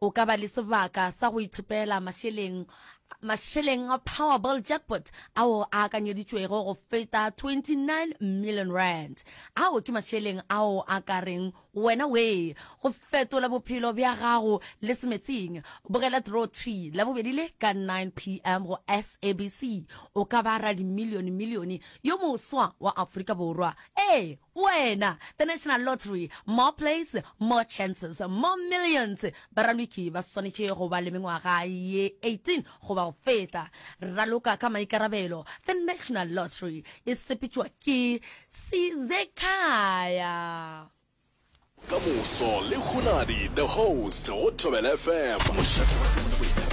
O ka ba le sebaka sa go ithopela mašeleng mašeleng a Powerball Jackpot ao a akanyeditšwego go feta 29 million rand. Ao ke mašeleng ao a ka reng wena wee go fetola bophelo bja gago le semetsing. Bogela Draw Thwi Labobedi le ka 9 pm go SABC. O ka ba radimilione-milione yo moswa wa Afrika Borwa. Ee! Wena, the National Lottery, more plays, more chances, more millions. Baraloki ba swanetše go ba le mengwaga ye 18 goba go feta. Raloka ka maikarabelo, the National Lottery e sepetšwa ke Sizekhaya. Ka moso le Hunadi the host go Thobela FM.